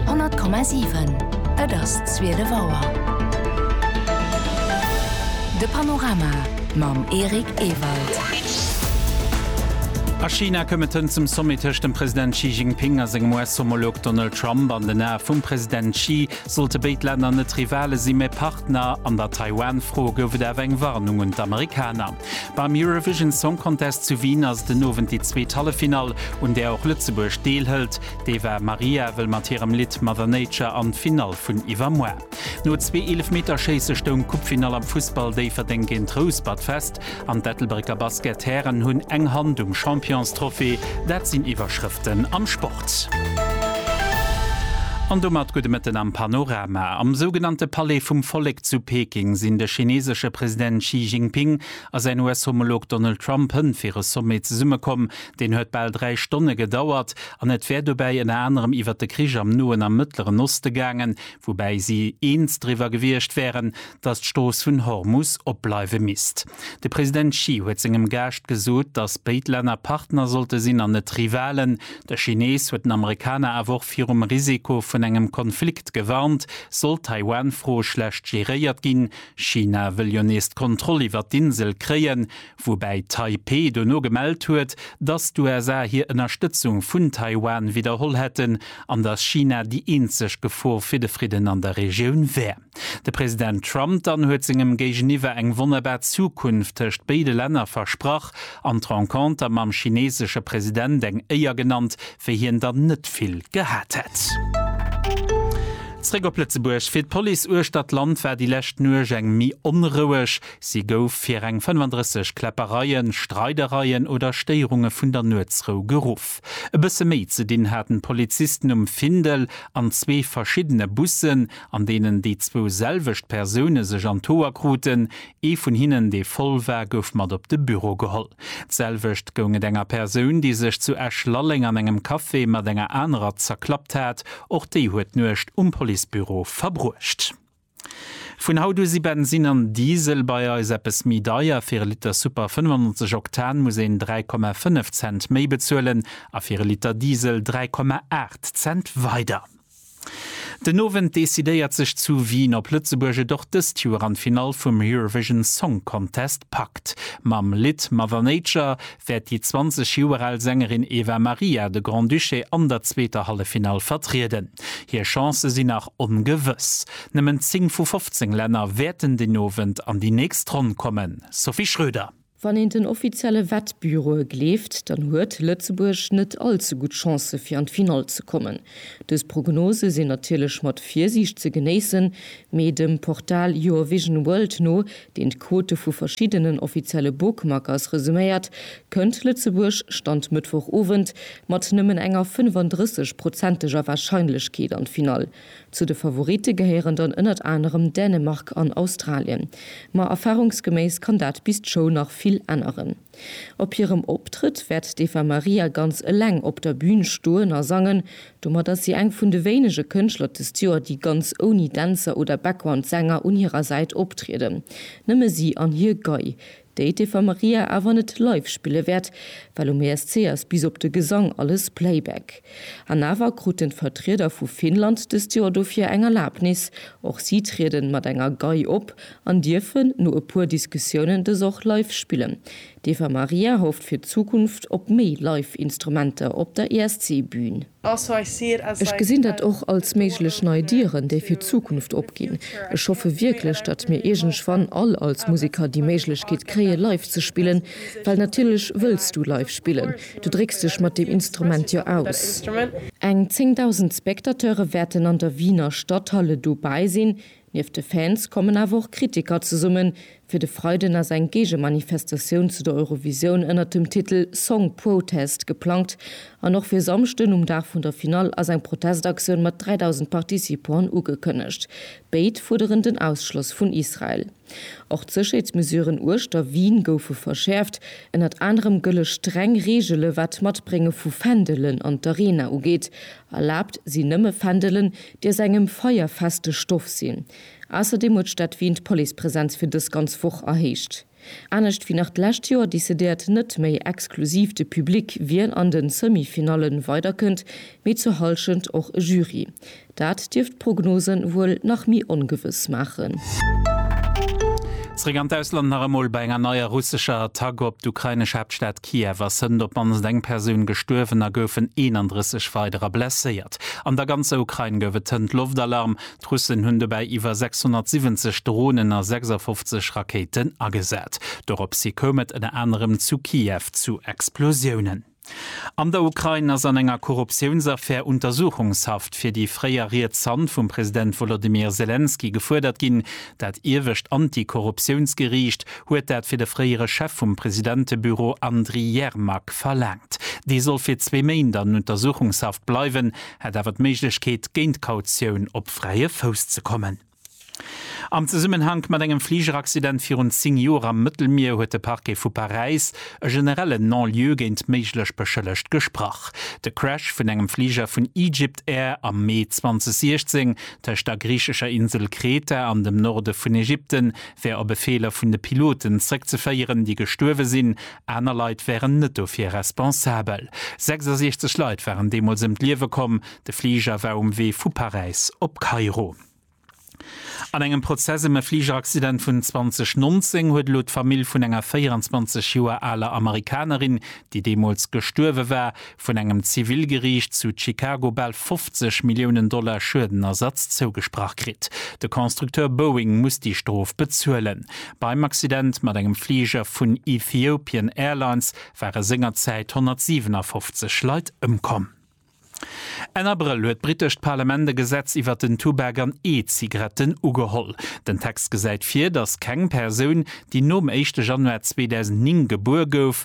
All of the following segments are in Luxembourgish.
100,7 Et ass zwielef Auer. De Panorama mam Eric Ewald. A China koum et hënt zum Sommet tëscht dem President Xi Jinping a sengem US-Homolog Donald Trump. An den Ae vum President Xi sollte béid Länner net Rivale sinn, mä Partner. An der Taiwan-Fro gouf et awer eng Warnung un d'Amerikaner. Beim Eurovision Song Contest zu Wien ass den Owend déi zweet Halleffinall, un där och Lëtzebuerg deelhëlt. D'Eva Maria wëll mat hirem Lidd Mother Nature an d'Finall vun iwwermuer. No zwee Eelefmeterschéisse stoung d'Coupefinall am Fussball Déifferdeng géint Rouspert fest an d'Ettelbrécker Basket-Hären hunn eng Hand um Championstrophée. Dat sinn Iwwerschrëften am Sport. An domat gudde Mëtten am Panorama. Am sougenannte Palais vum Vollek zu Peking sinn de chineesesche President Xi Jinping a säin US-Homolog Donald Trump hënt fir e Sommet zesummekomm. Deen huet bal dräi Stonne gedauert an et wär dobäi ënner anerem iwwer de Krich am Noen a Mëttleren Oste gaangen, woubäi si eens driwwer gewiescht wären, datt d'Strooss vun Hormus opbleiwe misst. De President Xi huet sengem Gaascht gesot, datt béid Länner Partner sollte sinn an net Rivalen. De Chinees huet den Amerikaner awer och virum Risiko vun engem Konflikt gewarnt, sollt d'Taiwan-Fro schlecht geréiert ginn. China wëll jo nees d'Kontroll iwwert d'Insel kréien, woubäi Taipeh dono gemellt huet, datt d'USA hir Ënnerstëtzung vun Taiwan widderholl hätten an datt China déi eenzeg Gefor fir de Fridden an der Regioun wär. De President Trump dann huet sengem Géigeniwwer eng wonnerbar Zukunft tëscht béide Länner versprach an d'Renconter mam chineesesche President eng Éier genannt, wéi hien der net vill gehat hätt. Zréck op Lëtzebuerg, Fir d'Police uechtert d'Land war déi lescht Nuecht eng méi onroueg. Si gouf fir reng 35 Kläppereien, Streidereien oder Stéierunge vun der Nuetsrou geruff. E bësse méi ze dinn haten d'Polizisten um Findel an zwee verschiddene Bussen. an deenen déi zwou selwecht Persoune sech an d'Hoer kruten. Ee vun hinnen, dee voll war, gouf mat op de Büro geholl. D'selwecht goung et enger Persoun, déi sech zu Esch-Lalleng an engem Café mat enger anerer zerklappt hat. Och déi huet d'Nuecht um Policebüro verbruecht. Vun haut u si Bensin an Diesel bei eis eppes méi deier. Fir e Liter Super 95 Oktan muss een 3,5 Cent méi bezuelen a fir e Liter Diesel 3,8 Cent weider. Den Owend decidéiert sech zu Wien, ob Lëtzebuerg et och dëst Joer an d'Finall vum Eurovision Song Contest packt. Mam Lidd Mother Nature wäert déi 20 Joer al Sängerin Eva Maria de Grand-Duché an der zweeter Halleffinall vertrieden. Hir Chancë sinn nach ongewëss. Nëmmen 10 vu 15 Länner wäerten den Owend an déi nächst Ronn kommen. Sophie Schröder. Wann een den offizielle Wettbüroe gleeft, dann huet Lëtzebuerg net all ze gutt Chancë fir an d'Finall ze kommen. Dës Prognose sinn natierlech mat Virsiicht ze genéissen, mee dem Portal Your Vision World no, deen d'Quote vu verschiddenen offizielle Bookmakers resuméiert, kënnt Lëtzebuerg, Stand Mëttwochowend, mat nëmmen enger 35 prozenteger Warscheinlechkeet an d'Finall. Zu de Favoritte gehéieren dann ënnert anerem Dänemark an Australien. Ma erfarungsgeméiss kann dat bis d'Show nach vill änneren. Op hirem Optrëtt wäert d'Eva Maria ganz eleng op der Bün stoen a sangen. Domat ass si eng vun de wéinege Kënschtler dëst Joer, déi ganz ouni Dänzer oder Background-Sänger un hirer Säit optrieden. Nëmme si an hir Gei, déi d'Eva Maria awer net live spille wäert, well um ESC ass bis op de Gesang alles Playback. An awer kruten d'Vertrieder vu Finnland dëst Joer dofir eng Erlabnis, och si trieden mat enger Gei op an dierfen no e puer Diskussiounen dës och live spillen. D'Eva Maria hofft fir d'Zukunft op méi live Instrumenter op der ESC-Bühn. Ech gesinn dat och als méiglech nei Dieren, déi fir d'Zukunft opginn. Ech hoffe wierklech, datt mir iergendwann all als Museker déi Méiglechkeet kréie live ze spillen, well natierlech wëlls du live spillen, du drécks dech mat deem Instrument jo aus. Eng 10.000 Spectateure wäerten an der Wiener Stadthalle dobäi sinn, Nieft de Fans kommen awer och Kritiker zesummen, fir de Freiden ass eng Géigemanifestatioun zu der Eurovisioun ënnert dem Titel Song Protest geplangt an och fir Samschden um Dag vun der Finall ass eng Protestaktioun mat 3.000 Participanten ugekënnegt. Béid fuerderen den Ausschloss vun Israel. Och d'Sécherheetsmesuren uechter Wien goufe verschäerft. Ënnert anerem gëlle streng Reegele wat d'Matbrénge vu Fändelen an d'Arena ugeet. Erlaabt sinn nëmme Fändelen, déi aus engem feierfeste Stoff sinn. Ausserdeem huet d'Stad Wien d'Policepresenz fir dës ganz Woch erhéicht. Anescht wéi nach d'lescht Joer decidéiert net méi exklusiv de Public, wien an de Semi-Finalle weiderkënnt, mee zur Hallschent och e Jury. Dat dierft d'Prognose wuel nach méi ongewëss maachen. Zeréck an d'Ausland, nach emol bei enger neier russescher Attack op d'ukrainesch Haaptstad Kiew ass hënt op d'mannst eng Persoun gestuerwen a goufen 31 weiderer blesséiert. An der ganzer Ukrain gouf et hënt Loftalarm. D'Russen hunn dobäi iwwer 670 Dronen a 56 Rakéiten agesat. Doropshi koum et ënner anerem zu Kiew zu Explosiounen. An der Ukrain ass an enger Korruptiounsaffär Untersuchungshaft fir déi fréier riets Hand vum President Wolodymyr Selenskyj gefuerdert ginn. Dat iewescht Anti-Korruptiounsgeriicht huet dat fir de fréiere Chef vum Presidentebüro Andry Yermak verlaangt. Dee soll fir zwee Méint an Untersuchungshaft bleiwen, hätt awer d'Méiglechkeet, géint Kautioun op fräie Fouss ze kommen. Am Zesummenhank mat engem Fligeraccident virun 10 Joer am Mëttelmier huet de Parquet vu Paräis e generellen Non-lieu géint méiglech Beschëllegt gesprach. De Crash vun engem Fliger vun Egypt Air am Mee 2016 tëscht der griichescher Insel Kreta an dem Norde vun Ägypten, wär op e Feeler vun de Piloten zréckzeféieren, déi gestuerwe sinn. Aner Leit wären net dofir responsabel. 66 Leit waren deemools ëm d'Liewe komm. De Fliger war um Wee vu Paräis op Kairo. An engem Prozess ëm e Fligeraccident vun 2019 huet elo d'Famill vun enger 24 Joer aler Amerikanerin, déi deemools gestuerwe war, vun engem Zivilgeriicht zu Chicago bal 50 Milliounen Dollar Schuedenersatz zougesprach kritt. De Constructeur Boeing muss déi Strof bezuelen. Beim Accident mat engem Fliger vun Ethiopian Airlines ware sengerzäit 157 Leit ëmkomm. Enn Abrëll huet d'brittescht Parlament e Gesetz iwwert den Tubak an E-Zigaretten ugeholl. Den Text gesäit vir, datt keng Persoun, déi nom éischte Januar 2009 gebuer gouf,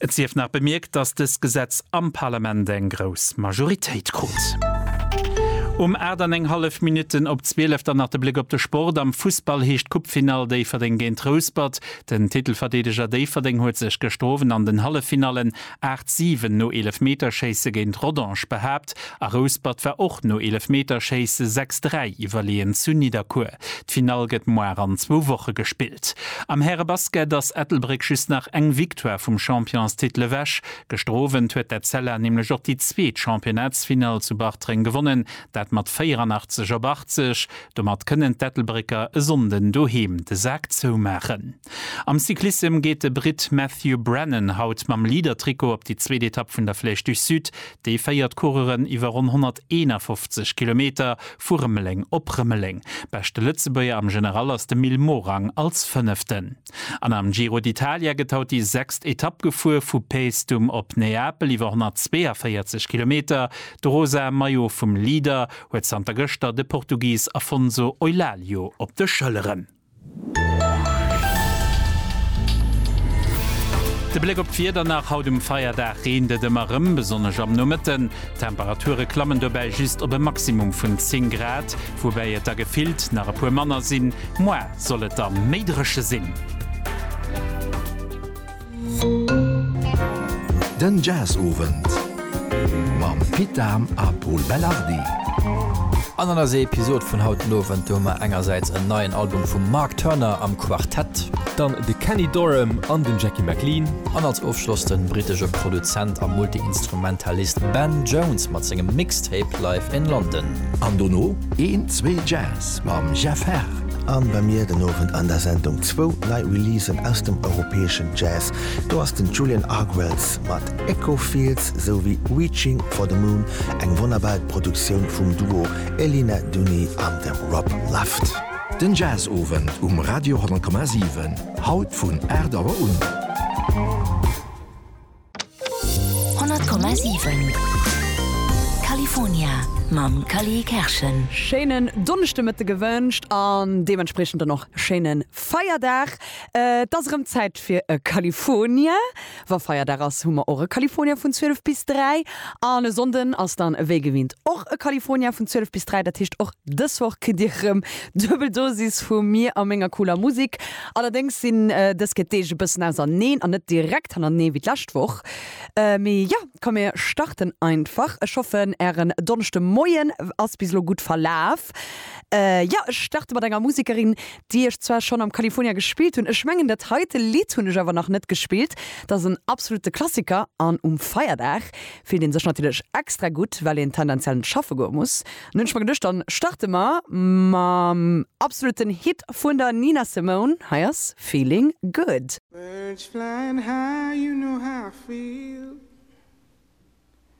Et sief nach bemierkt, dass dëst Gesetz am Parlament eng grouss Majoritéit krut. Um 8 an eng hallef Minutten op 12, dann nach de Bléck op de Sport. Am Fussball heescht d'Coupefinall Déifferdeng géint Rouspert. Den Titelverdeedeger Déifferdeng huet sech gëschter Owend an den Halleffinallen 8, 7 no Eelefmeterschéisse géint Rodange behaapt a Rouspert war och no Eelefmeterschéisse 6, 3 iwwerleeën zu Nidderkuer. D'Finall gëtt moar an zwou Woche gespillt. Am Härebasket ass Ettelbréck just nach eng Victoire vum Championstitel ewech. Gëschter Owend huet d'Etzella nämlech och déi zweet Championnatsfinall zu Bartreng gewonnen, dat mat 84 op 80. Domat kënnen d'Ettelbrécker e Sonnden doheem de Sak zoumaachen. Am Cyclissem geet de Britt Matthew Brennan haut mam Leader-Trikot op déi zweet Etapp vun der Flèche du Sud. Déi féiert d'Coureuren iwwer ronn 151 Kilometer vu Rëmeleng op Rëmeleng. Beschte Lëtzebuerger am General ass de Mil Morang als Fënneften. An am Giro d'Italia gëtt haut déi sechst Etapp gefuer, vu Paestum op Neapel iwwer 142 Kilometer. De rosa Maillot vum Leader huet zanter gëschter de Portugis Afonso Eulálio op de Schëlleren. De Bléck op d'Wieder nach haut um Feierdag, Reent et ëmmer rem, besonnesch am Nomëtten. D'Temperature klammen dobäi just op e Maximum vun 10 Grad, woubäi et der gefillt nach e puer manner sinn. Moar soll et da méi dréche sinn. Den Jazzowend mam Pit Dahm a Pol Belardi. An an eiser Episod vun haut den Owend, do hu mer engersäits en neien Album vum Mark Turner am Quartett. Dann de Kenny Dorham an den Jackie McLean. An als Ofschloss den brittesche Produzent a Multiinstrumentalist Ben Jones mat sengem Mixtape Live in London. An dono een, zwee Jazz mam Jeff Herr. An bei mir den Owend an der Sendung zwou nei Releasen aus dem europäeschen Jazz. Do ass den Julian Argwells mat Echo Fields esou wéi Reaching for the Moon, eng wonnerbar Produktioun vum Duo Elina Duni an dem Rob Luft. Den Jazzowend um Radio 10,7, haut vun 8 Auer un. 100,7 California mam Cally Kerschen. Schéinen Donneschdemëtte gewënscht an deementspriechend dann och schéine Feierdag. Et ass erëm Zäit fir e California. Wa Feierdag ass, hu mer och e California vun 12 bis 3. An e Sonnden ass dann ewéi gewinnt och e California vun 12 bis 3. Dat heescht, och dës Woch kritt Dir erëm duebel Dosis vu mir a menger cooler Musek. Allerdéngs sinn dës Kéier d'Deeg e bëssen auserneen an net direkt hannernee wéi d'lescht Woch. Mee jo, komm mir starten einfach. Ech hoffen ären Donneschdemoien ass bis elo gutt verlaf. Jo, ech starte mat enger Musekerin, déi ech zwar schonn am California gespillt hunn. Ech mengen dat heite Lidd hunn ech awer nach net gespillt. Dat ass en absolutte Klassiker an um Feierdag fillt een sech natierlech extra gutt, well een tendenziell net schaffe goe muss. Nun ech mer geduecht dann starte mer mam absoluten Hit vun der Nina Simone, hei ass Feeling Good. Birds flying high, you know how I feel.